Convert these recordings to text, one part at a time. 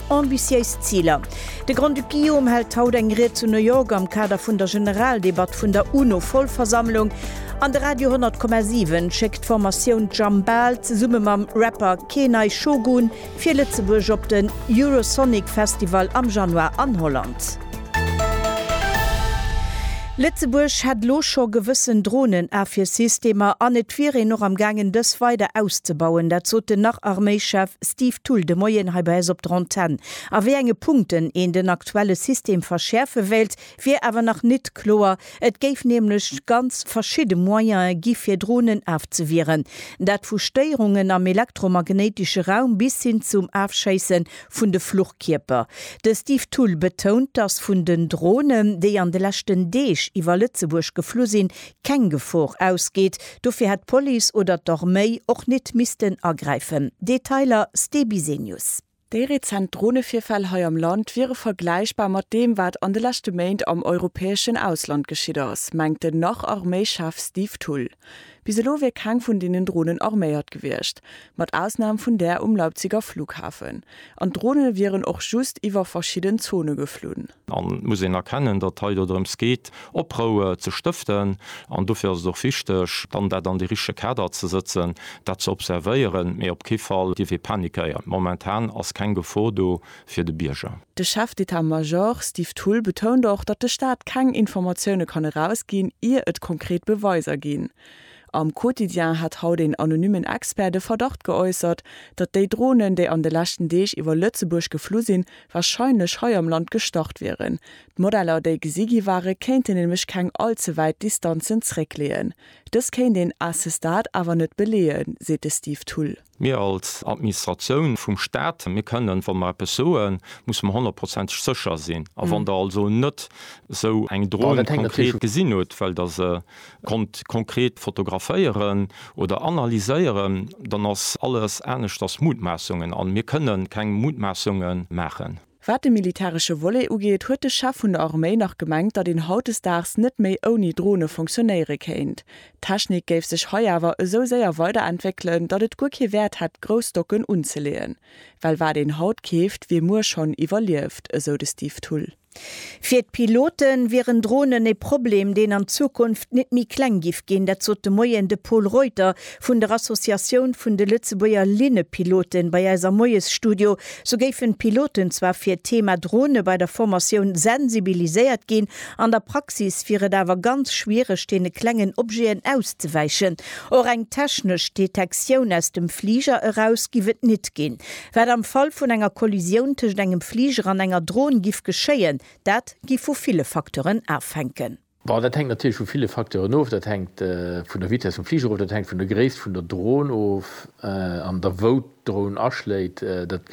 Ambitiéis Ziler, De Grand-Duc Guillaume hält haut eng Ried zu New York am Kader vun der Generaldebatt vun der UNO-Vollversammlung an de Radio 100,7 schéckt d'Formatioun Jambal zesumme mam Rapper Keenai Shogun fir Lëtzebuerg op den Eurosonic Festival am Januar an Holland. Lëtzebuerg hätt elo scho gewëssen Dronen-Afwiersystemer an et wier een och am gaangen dës weider auszebauen, dat sot den Nach-Arméischef Steve Thull, De Moien hei bei eis op der Antenn. A wéi enge Punkten een den aktuelle System verschäerfe wéilt, wier awer nach nit kloer. Et géif nämlech ganz verschidde Moyene gi fir Dronen afzewieren. Dat vu Stéierungen am elektromagnéitesche Raum bis hin zum Afschéisse vun de Fluchkierper. De Steve Thull betount, datt vun den Dronen, déi an de leschten Deeg iwwer Lëtzebuerg geflu sinn, keng Gefor ausgeet, dofir hätt d'Police oder d'Arméi och nit missten agräifen, Detailer Ste Bisenius. Déi rezent Dronevirfäll hei am Land wiere vergläichbar mat deem, wat an de leschte Méint am europäeschen Ausland geschitt ass, mengt den Nach-Arméi-Chef Steve Thull. Bis elo wier keng vun deenen Dronen arméiert gewiescht, mat Ausnam vun där um Leipziger Flughafen. An d'Drone wieren och just iwwer verschidden Zone geflunn. An et muss een erkennen, datt et hei dodrëms geet, Oproue ze stëften. An dofir ass et och wichteg, dann dat an de richtege Kader ze sëtzen, dat ze observéieren, mee op kee Fall dierf ee panikéieren. Momentan ass keng Gefor do fir de Bierger. De Chef d'État Major Steve Thull betount och, datt de Staat keng Informatioune kann erausginn, ier et konkret Beweiser ginn. Am Quotidien hat haut een anonymmen Expert de Verdacht geäussert, datt déi Dronen, déi an de leschten Deeg iwwer Lëtzebuerg geflu sinn, warscheinlech hei am Land gestart wieren. D'Modeller, déi gesi gi ware kéinten nämlech keng all ze wäit Distanzen zréckleeën. Dës kéint een à ce stade awer net beleeën, seet de Steve Thull. Mir als Administratioun vum Stat, mir kënnen, wa mer eppes soen, musse mer honnertprozenteg sécher sinn. A wann Der also net esou eng Dron konkret gesinn hutt, well Der se konnt konkret fotograféieren oder analyséieren, dann ass alles aneschters Mutmaassungen. A mir kënnen keng Mutmaassungen maachen. Wat de militäresche Volet ugeet, huet de Chef vun der Arméi nach gemengt, datt een hautdesdaags net méi ouni Drone fonctionéiere kéint. D'Technik géif sech hei awer esou séier weiderentwéckelen, datt et guer kee Wäert hätt grouss Stocken unzeleeën, well wat een haut keeft, wier muer schonn iwwerlieft, esou de Steve Thull. Fir d'Pilote wieren Dronen e Problem, deen an Zukunft net méi kleng giff ginn. Dat sot de Moien de Pol Reuter vun der Associatioun vun de Lëtzebuerger Linnepiloten bei eis am Moiesstudio. Sou géifen d'Piloten zwar fir d'Thema Drone bei der Formatioun sensibiliséiert ginn, an der Praxis wier et awer ganz schwiereg, deene klengen Objeten auszewäichen. Och eng technesch Detektioun aus dem Fliger eraus giff et nit ginn. Wat am Fall vun enger Kollisioun tëscht engem Fliger an enger Drone giff geschéien, dat giff vu ville Facteuren afhänken. Bon, dat hänkt natierlech vu ville Facteuren of. Dat hänkt vun der Vitess vum Fliger of, dat hänkt vun der Gréisst vun der Dron of an der wou d'Dron aschléit. Dat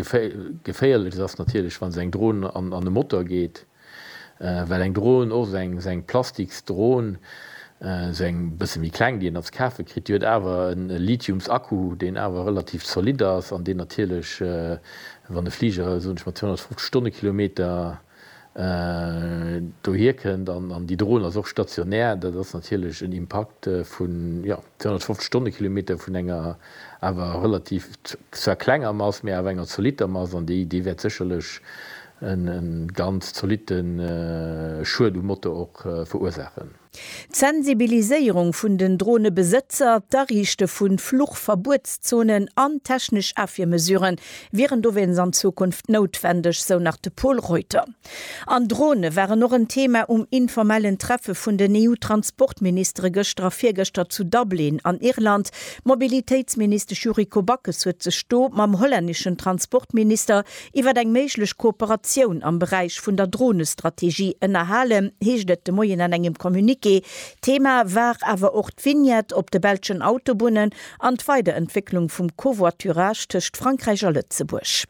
Geféierlechst ass natierlech, wa se eng Dron an e Motor geet, well eng Dron, och esou eng Plastiksdron, esou eng e bësse méi kleng, déi een da ze kafe kritt, déi huet awer e Lithiumsakku, deen awer relativ zolidd ass an deen natierlech, wann e Fliger, soen ech mol, 250 Stonnekilometer dohier kënnt, an déi Dron ass och stationär, dat ass natierlech en Impakt vun 250 Stonnekilometer vun enger awer relativ, zwar klenger Mass, mä awer enger zolitter Mass, an déi wäert sécherlech e ganz zolitte Schued um Motor och verursaachen. D'Sensibiliséierung vun den Dronebesëtzer, d'Ariichte vu Fluchverbuetszonen an technesch Afwiermesuren wieren dowéinst an Zukunft noutwendeg, sou nach de Pol Reuter. An Drone waren och en Thema um informellen Treffe vun den EU-Transportministere gëschter a virgëschter zu Dublin an Irland. D'Mobilitéitsministesch Yuriko Backes huet sech do mam hollänneschen Transportminister Iwwer eng méiglech Kooperatioun am Beräich vun der Dronestrategie ënnerhalen, heescht et de Moien an engem Communiqué. Thema war awer och d'Vignette op de belschen Autobunnen an d'Weiderentwécklung vum Covoiturage tëscht Frankräich a Lëtzebuerg.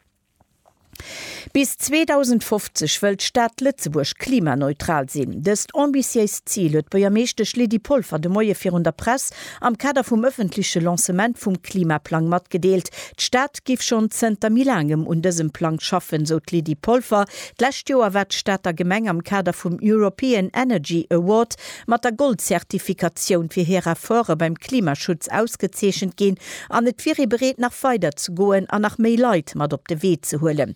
Bis 2050 wëll d'Stad Lëtzebuerg klimaneutral sinn. Dëst ambitiéist Zil huet d'Buergermeeschtesch Lydie Polfer de Moie virun der Press am Kader vum ëffentleche Lancement vum Klimaplang matgedeelt. D'Stad géif schonn zënter méi laangem un dësem Plang schaffen, sou d'Lydie Polfer. D'lescht Joer war d'Stater Gemeng am Kader vum European Energy Award mat der Goldzertifikatioun fir hir Efforte beim Klimaschutz ausgezeechent ginn an et wier ee bereet, nach weider ze goen an nach méi Leit mat op de Wee ze huelen.